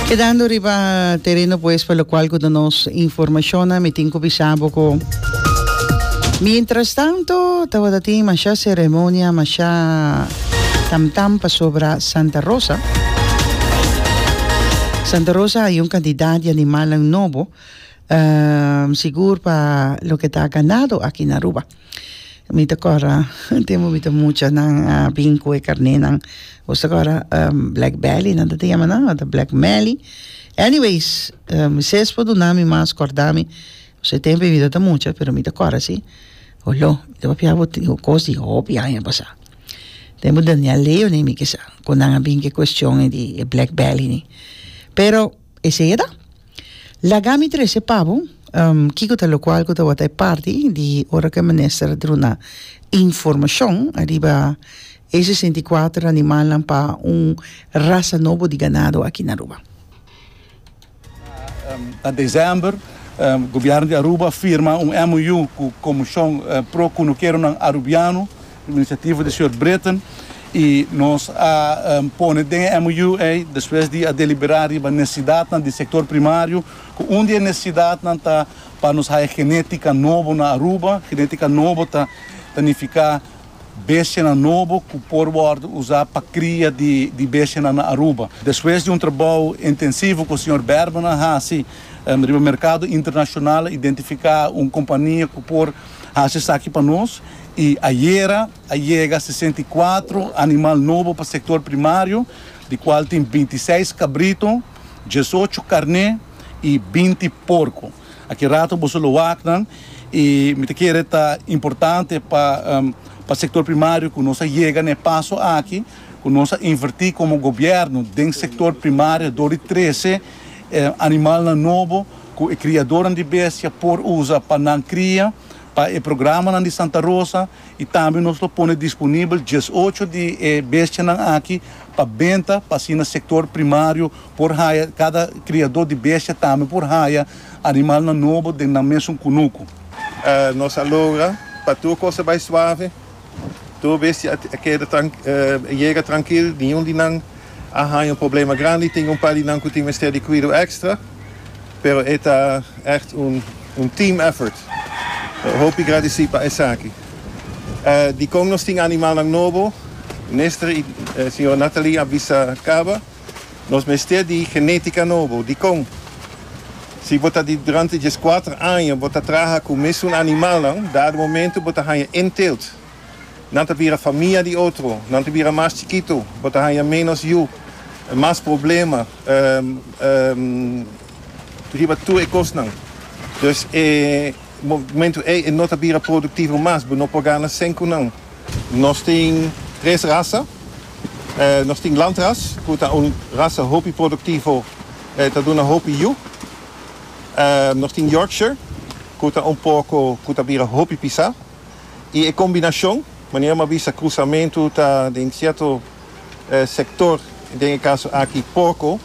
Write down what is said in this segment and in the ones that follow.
Kedando riba tereno pues pa lokual ku ta nos informashonnan mi tin ku bisa bo ku mientrastanto tabata tin masha seremonia masha tam tam pasobra Santa Rosa Santa Rosa hay un cantidad di animalnan nobo sigur pa loke ta ganado aki na Aruba. Mi ta kòrda un tempu mi ta mucha nan a bin ku e karnénan boso ta kòrda blèk bèli nan ta tin yama nan ota blèk mèli eniweis mi ses por duna mi mas kòrda mi paske e tempu mi ta mucha pero mi ta kòrda si oló mi ta papia bo tin kos di hopi aña pasá tempu daniel leo ni mi kisa ku nan a bin ku e kuestion di e blèk bèli ni pero esei eda Laga mi trece pa bo kiko ta locual cu tabata e parti di ora cu e minister a druna informacion ariba e sesenta i kuater animalnan pa un rasa nobo di ganado aki na Aruba. Na december gobierno di Aruba a firma un MOU cu Comision pro Cunukeronan Arubiano, Un inisiativo di señor Bretten y nos a pone den e MOU ey despues di a delibera riba necesidadnan di sector primario cu un di e necesidadnan ta pa nos haya genetica nobo na Aruba. Genetica nobo ta ta nifica bestianan nobo cu por wordo usa pa cria di di bestianan na Aruba. Despues di un trabao intensivo cu señor Berman a haci riba mercado internacional a identifica un compania cu por haci esaki pa nos. I ayera a yega sesenta i kuatro animal nobo pa sektor primario, di kual tin binti seis kabrito, diesocho karné i binti porko. Aki rato boso lo wak nan i mi ta kere ta importante pa pa sektor primario ku nos a yega na e paso aki ku nos a invertí komo gobièrnu den sektor primario dor di trese animalnan nobo ku e kriadornan di bestia por usa pa nan kria Pa e programanan di Santa Rosa y tambe nos lo pone disponibel diesocho di e bestianan aki pa benta pa asina sector primario por haya, cada criador di bestia tambe por haya animalnan nobo den nan mesun cunucu. Nos a logra pa tur cosa bay suave. Tur bestia a keda yega trankil, niun di nan a haña un problema grandi. Tin un par di nan ku tin mester di kuido èkstra, pero e ta ègt un team effort. Hopi gradisí pa esaki. Dikon nos tin animalnan nobo, Nestre i señora Nathalie a bisa kaba. Nos mester di genetica nobo. Dicon? Si bo ta di durante djes cuater aña bo ta traha cu mesun animalnan, dado momento bo ta hanja en teelt. Nan ta bira famia di otro. Nan ta bira mas chikito. Bo ta hanja menos yu, mas problema riba tur e cosnan. Dus e momento ey e no ta bira productivo mas. Bo no por gana sen cu nan. Nos tin tres raza. Nos tin lantras cu ta un rasa hopi productivo e ta duna hopi yu. Nos tin Yorkshire cu ta un porco cu ta bira hopi pisa. Y e combinacion, manera m'a bisa cruzamento ta den cierto sector, den e caso aki porco,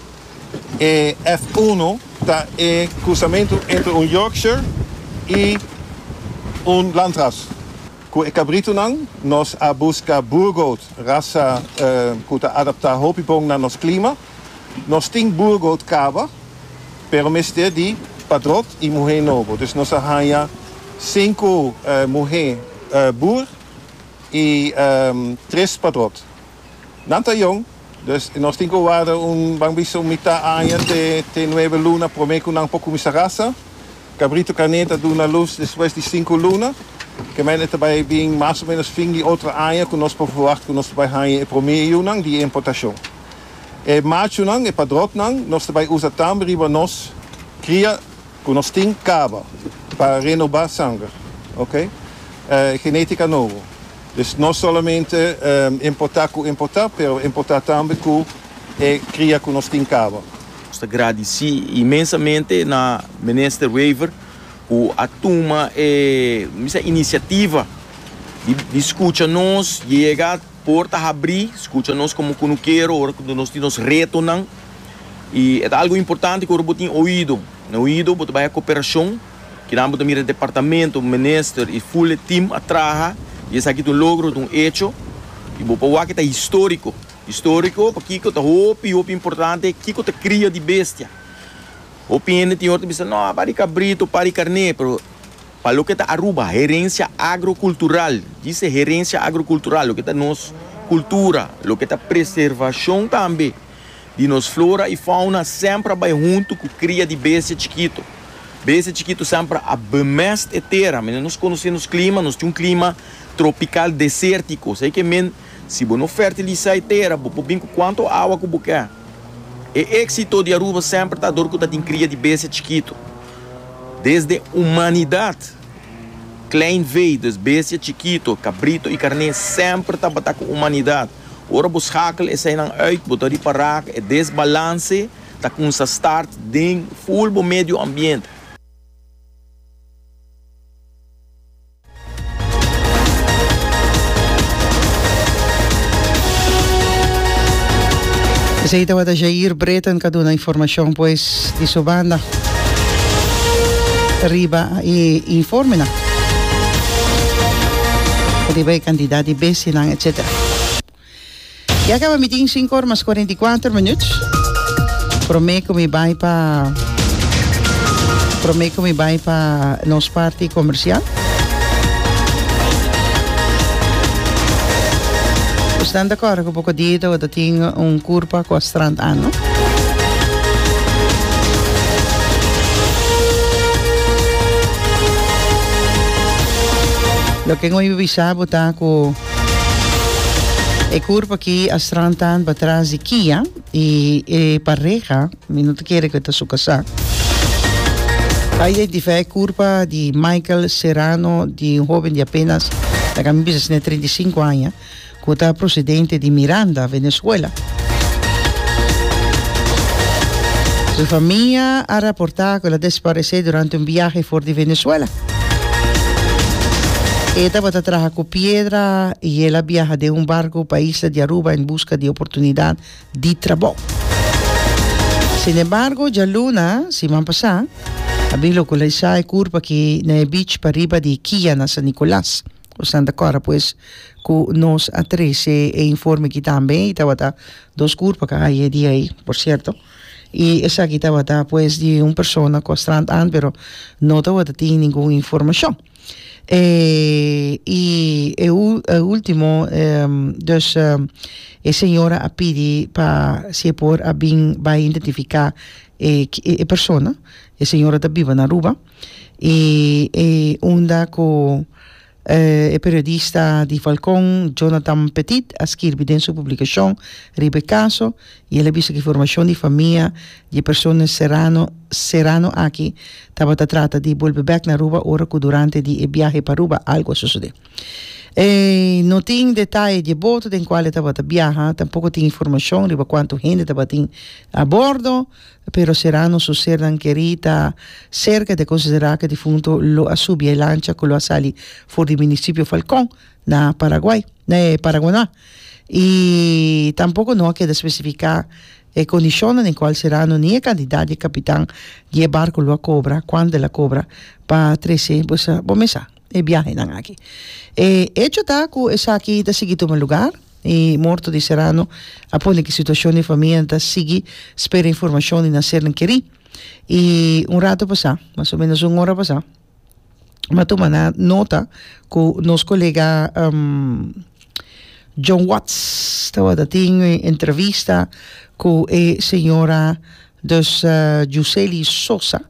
e F uno ta e cruzamento entre un Yorkshire y un lantras. Ku e kabritunan nos a buska boergoat, rasa ku ta adaptá hopi bon na nos klima. Nos tin boergoat kaba, pero mester di padrot i muhé nobo. Dus nos a haña sinku muhé boer i tres padrot. Nan ta jong, dus nos tin ku warda un, ban bisa un mitá aña te te nuebe luna promé ku nan por kuminsá rasa. Kabritu kané ta duna lus despues di sinku luna. Kemente ta bai bin mas o ménos fin di otro aña ku nos por ferwagt ku nos ta bai haña e promé yunan di e importashon. E machunan, e padròknan, nos ta bai usa tambe riba nos kria. Cu nos tin caba pa renoba sanger, ok, genetica nobo. Dus no solamente importa cu importa, pero importa tambe cu e cria cu nos tin caba. Nos ta gradici inmensamente na Minister Wever cu a tuma e, mi bisa, iniciativa di scucha nos, di yega. Por ta habrí, skucha nos komo ku no kero ora ku nos tin nos retonan. I e ta algu importante ku ora bo tin oido na oido bo ta bai a koperashon, kinan bo ta mira departamento, minister i ful e tim a traha i esaki ta un logro, ta un echo. I bo por wak e ta históriko. Históriko pakiko? Ta hopi hopi importante kiko ta kria di bestia. Hopi hende tin ora ta bisa, No, a par di kabrito, a par di karné, pero. Pa loke ta Aruba, herencia agrocultural, dise herencia agrocultural, loke ta nos cultura, loke ta preservacion tambe di nos flora y fauna semper a bay hunto cu cria di bestia chikito. Bestia chikito semper a bemest e tera, mende nos conoce nos clima, nos tin un clima tropical desertico, esey ke mende si bo no fertilisa e tera bo por bin cu cuanto awa cu bo ke. E éksito di Aruba semper ta dor ku ta tin kria di bestia chikitu. Desde humanidat, kleinveedes, bestia chikitu, kabrito i karné, semper tabata ku humanidat. Ora bo skakel eseinan uit, bo ta ripará ku e desbalanse ta kumsa start den full bo medioambiente. Esei tabata Jair Breton ka duna informashon pues di su banda riba e informenan riba e kantidat di besinan etsetera. Ya caba mi tin cinco ora mas cuarenta y cuatro minuut. Prome cu mi bay pa... Prome cu mi bay pa nos party comercial. Pues dan de cor cu poco día te wata tin un curpa cu a strand aan, no? Lo que ngui bisa bo ta cu... E kurp aki a strand tan pa tras di Kia i e pareha mi no ta kere ku e ta su kasá. A identifia e kurpa di Michael Serrano di un hoben di apenas ta kami bisa si na e treinta i sinku aña ku ta prosedente di Miranda, Venezuela. Su famia a raportá ku el a desparesé durante un biahe for di Venezuela. E tabata traha cu piedra y el a biaha den un barco pa isla di Aruba en busca di oportunidad di trabou. Sin embargo, djaluna, siman pasá, a bin localisá e curpa aki na e beach pariba di Kia na San Nicolas. Bosan ta cora pues cu nos a trece e informe aki tambe y tabata dos curpa ca haye di ay, por cierto. y esaki tabata pues di un persona cu a strand aan pero no tabata tin ningun informacion y e ultimo dus e señora a pidi pa si e por a bin bay identifica e persona e señora ta biba na Aruba y e unda cu E periodista di Falcon, Jonathan Petit, a skirbi den su publikashon riba e kaso i el a bisa ku e formashon di famia di e persona Serrano Serrano aki tabata trata di bolbe bèk na Aruba ora ku durante di e biahe pa Aruba algu a sosodé. No tin detaye di e boto den kual e tabata biaha, tampoko tin informashon riba kuantu hende tabatin a bordo. Pero sera nos su sernan kerí ta serka di konsiderá ku e difunto lo a subi e lancha ku lo a sali for di munisipio Falkon na Paraguay, na e Paraguaná. I tampoko no a keda spesifiká e kondishonnan den kual Serrano ni e kantidat di e kapitan di e barku lo a kobra, kuantu el a kobra pa trese boso bo mesa e biahenan aki. E echo ta ku esaki ta sigui tuma lugar. i morto di Serrano a pone cu e situacion di e famia nan ta sigui spera informacion di nan sernan keri i un rato pasa mas o menos un ora pasa mi a tuma na nota cu nos colega John Watts tawata tin e entrevista cu e señora dus Juseli Sosa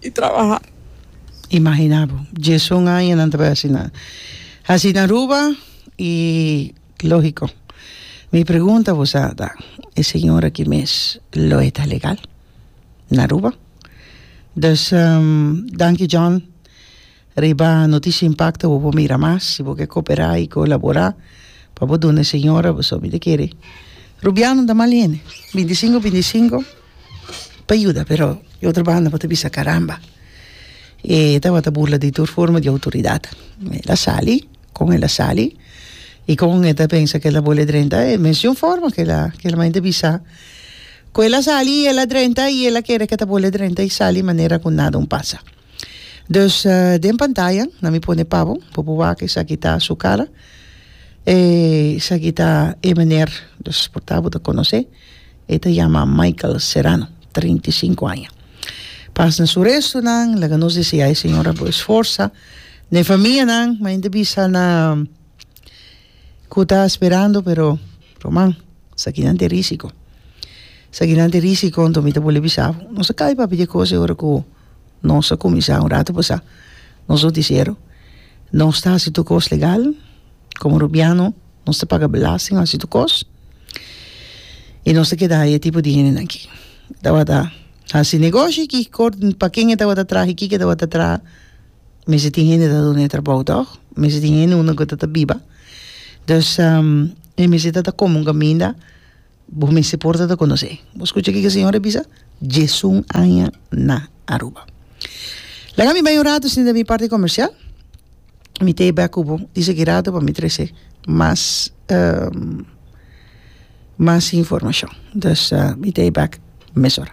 di trabaha. Imagina bo, diesun aña nan ta bay asina. Hasi na Aruba y logico. Mi pregunta bo sa ta, e señor aki mes lo e ta legal na Aruba? Dus danki John. Riba Noticia Impacta bo por mira mas si bo ke koperá i kolaborá pa bo duna e señora bo sòbi ta kere. Rubianon ta mal hende, binti sinku binti sinku pa yuda pero di otro banda bo ta bisa karamba e tabata burla di tur forma di outoridat. El a sali kon el a sali i kon e ta pensa ku el ta bole drenta e mes di un forma ku el a ku el a mainta bisa ku el a sali i el a drenta i el a kere ku e ta bole drenta i sali manera ku nada un pasa. Dus den pantaya nan mi pone pa bo, bo por wak esaki ta su cara. E esaki ta e meneer, dus por ta bo ta conoce, e ta yama Michael Serrano, treinta i sinku aña. Pas na su restonan, laga nos deseá e señora bo esforsa. Na e famia nan, mañana ta bisa na. Cu ta sperando pero ruman esaki nan te risico esaki nan te risico anto mi ta bole bisa bo nos a cay papi di e cos ora cu nos a cuminsa un rato pasa nos noticiero nos ta hasi tur cos legal como Rubiano nos ta paga belasting nos ta hasi tur cos y nos ta keda aye tipo di hende aki tabata hasi negoshi aki cor paken e tabata traha e ki ke tabata traha mester tin hende ta duna e trabou toch mester tin hende unda gua ta ta biba dus e mester ta ta komo kaminda bo mester por ta ta konosé bo skucha kiko e señor a bisa diezun aña na Aruba laga mi bai un rato sinta mi parti comercial mi ta e bek ku bo di saki rato pa mi trese mas mas informacion dus mi ta e bek mesora.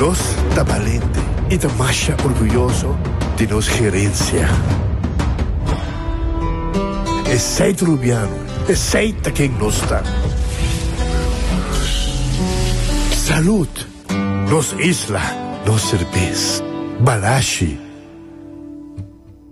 Nos ta balente i ta masha orguyoso di nos gerensia. Esei ta Rubiano, esei ta ken nos ta. Salud! Nos isla, nos serbes. Balashi!